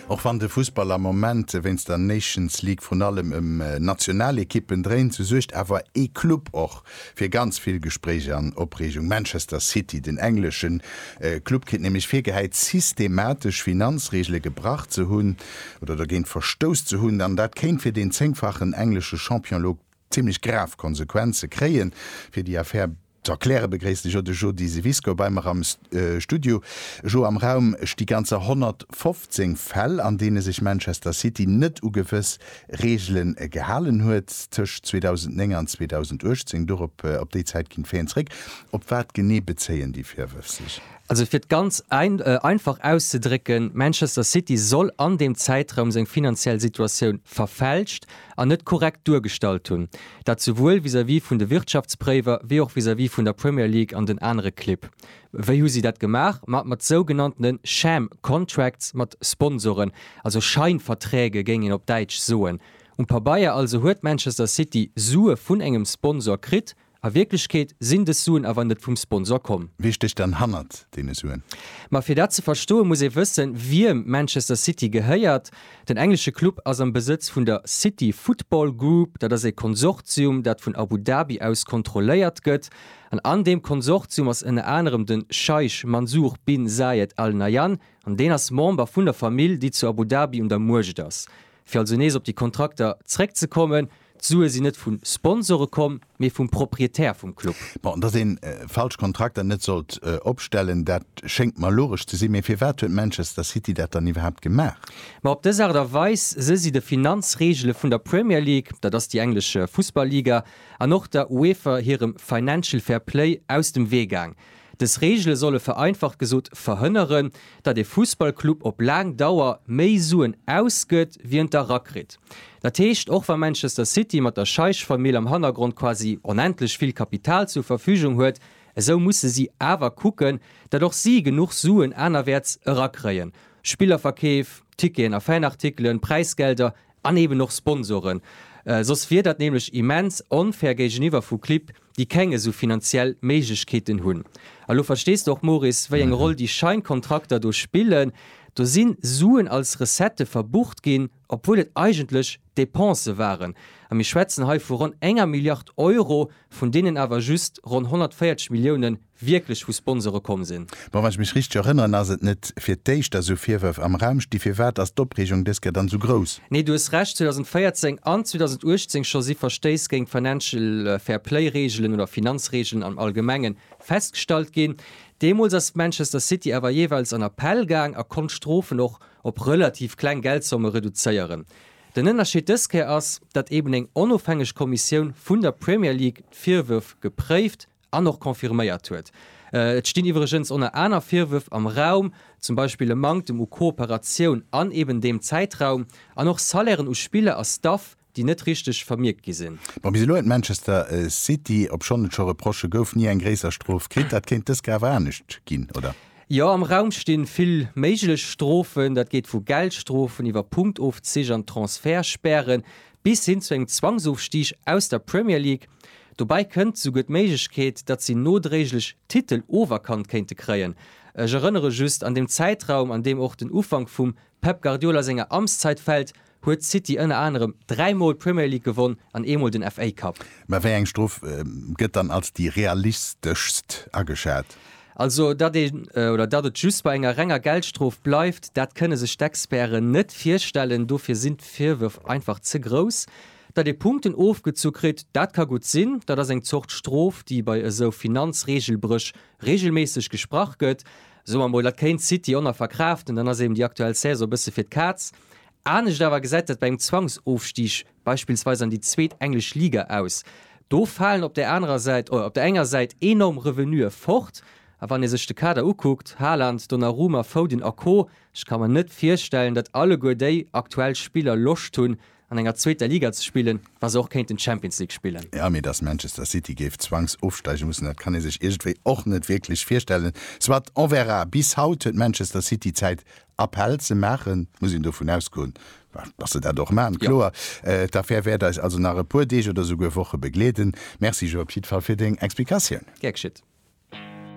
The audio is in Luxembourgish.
Och wann de Fussball am Moment wéinst der Nations League vrun allem ëm Nationalekippen dréint, sou suergt awer ee Club och fir ganz vill Gespréich an Opreegung, Manchester City. Den englesche Club kritt nämlech virgehäit, systematesch Finanzreegele gebrach ze hunn oder dogéint verstouss ze hunn. An dat kéint fir deen zéngfachen englesche Champion elo zimmlech grav Konsequenze kréien. Fir déi Affär. Ze erkläre begréisst de Jo de Jody Siwisko bei mer am Studio. Jo, am Raum sti ganzer 115 Fäll, an deene sech Manchester City net u gewëss Reegele gehalen huet tëscht 2009 an 2018. Dorop, op déi Zäit ginn d'Faen zeréck. Op wat genee bezéien déi Virwërf sech? Also fir et ganz einfach auszedrécken, Manchester City soll an deem Zäitraum seng finanziell Situatioun verfälscht an net korrekt duergestallt hunn, dat souwuel vis-à-vis vun de Wirtschaftspréiwer wéi och vis-à-vis vun der Premier League an den anere Clibb. Wéi hu si dat gemaach? Ma mat sougenanntene sham contracts, mat Sponsoren, also Scheinverträge géing een op Däitsch soen. Um Pabeier also huet Manchester City Sue vun engem Sponsor kritt, A Wierklechkeet sinn dës Suen awer net vum Sponsor komm. Wie stécht dann hannert deene Suen? Ma fir dat ze verstoen, muss ee wëssen, wiem Manchester City gehéiert. Den englesche Club ass am Besëtz vun der City Football Group. Dat ass ee Konsortium, dat vun Abu Dhabi aus kontrolléiert gëtt. An an deem Konsortium ass ënner anerem de Scheich Mansour bin Zayed Al Nahyan. An deen ass Member vun der Famill, déi zu Abu Dhabi un der Muecht ass. Fir also nees op déi Kontrakter zréckzekommen, D'Sue sinn net vu Sponsore komm, mee vum Proprietär vum Club. Bon, dass ee falsch Kontrakter net sollt opstellen, dat schéngt mer logesch ze sinn. Mee firwat huet Manchester City dat dann iwwerhaapt gemaach? Ma op dës Aart a Weis së si de Finanzreegele vun der Premier League, dat ass déi englesch Fussball-Liga, an och der UEFA hirem Financial Fair Play aus dem Wee gaang. Dës Reegele solle vereinfacht gesot verhënneren, datt ee Fussballclub op laang Dauer méi Suen ausgëtt, wéi en erakritt. Dat heescht, och wa Manchester City mat der Scheich-Famill am Hannergrond quasi onendlech vill Kapital zur Verfügung huet, esou musse si awer kucken, datt och si genuch Suen anerwäerts erakréien, Spillerverkeef, Ticketen a Fanartikelen, Präisgelder An eben och Sponsoren. Soss wier dat nämlech immens onfair géigeniwwer vu Clibb, déi keng esou finanziell Méiglechkeeten hunn. A lo verstees de och, Moris, wéi eng Roll déi Scheinkontrakter do spillen. Do si Suen als Recettë verbucht ginn, obwuel et eigentlech Depensë waren. A mir schwätzen hei vu ronn enger Milliard Euro, vun deenen awer just ronn 140 Milliounen wierklech vu Sponsore komm sinn. Bon, wann ech mech richteg erënneren, ass et net fir d'éischt, datt esou Virwërf am Raum sti. Firwat ass d'Opreegung dës Kéier dann esou grouss? Nee, du hues Recht, 2014 an 2018 scho si Verstéiss géint d'Financial Fair Play Reegelen oder Finanzreegelen am Allgemenge festgestallt ginn. Deemools ass Manchester City awer jeeweils an Appell gaang a konnt d'Strofen och op relativ kleng Geldsomme reduzéieren. Den Ënnerscheed dës Kéier ass, datt eben eng onofhängeg Kommissioun vun der Premier League d'Virwërf gepréift. an och confirméiert huet. Et stinn iwwregens oner aner Virwërf am Raum, zum Beispill e Manktem u Kooperatioun an eben deem Zäitraum, an och Salairen u Spiller a Staff, déi net richteg vermierkt gi sinn. Bon, bis elo huet Manchester City, obschonn et scho Reprochë gouf, ni eng gréisser Strof kritt. Dat kéint dës Ke awer anescht ginn, oder? Jo, am Raum stinn vill méiglech Strofen. Dat geet vu Geldstrofen iwwer Punktofzich an Transfertspären bis hin zu engem Zwangsofstig aus der Premier League. Dobäi kënnt souguer d'Méiglechkeet, datt si nodréiglech d'Titel oferkannt kéinte kréien. Ech erënnere just, an deem Zäitraum, an deem och den Ufank vum Pep Guardiola senger Amtszeit fält, huet City ënner anerem dräi Mol d'Premier League gewonn an ee Mol den FA Cup. Mä wéi eng Strof gëtt dann als déi realisteschst ageschat? Also datt een, oder datt et just bei enger renger Geldstrof bleift, dat kënne sech d'Experten net virstellen. Dofir sinn d'Virwërf einfach ze grouss. Datt ee Punkten ofgezu kritt, dat ka gutt sinn, dat ass eng Zort Strof, déi bei esou Finanzreegelbréch reegelméisseg gesprach gëtt. Soe mer mol, dat kéint d'City Honor verkraaften, dann ass eben déi aktuell Saison e bësse fir d'Kaz. Anescht awer gesäit dat bei engem Zwangsofstig beispillsweis an déi zweet englesch Liga aus, do falen op där anerer Säit, op der enger Säit enorm Revenue fort, a wann ee sech de Kader ukuckt, Haaland, Donnarumma, Foden a Co, ech ka mer net virstellen, datt alleguer déi aktuell Spiller Loscht hunn, an enger zweeter Liga ze spillen, wa se och kéinten d'Champions League spillen. Jo, mee datt Manchester City géif zwangs ofsteige mussen, dat kann ee sech iergendwéi och net wierklech virstellen. Soit, on verra. Bis haut huet Manchester City Zäit Appell ze maachen, muss een dovun ausgoen, dass se dat och maachen, kloer. D'Affär wäert eis also nach e puer Deeg oder souguer Woche begleeden. Merci, Joe, op jiddwer Fall fir deng Explikatioun. Gär geschit.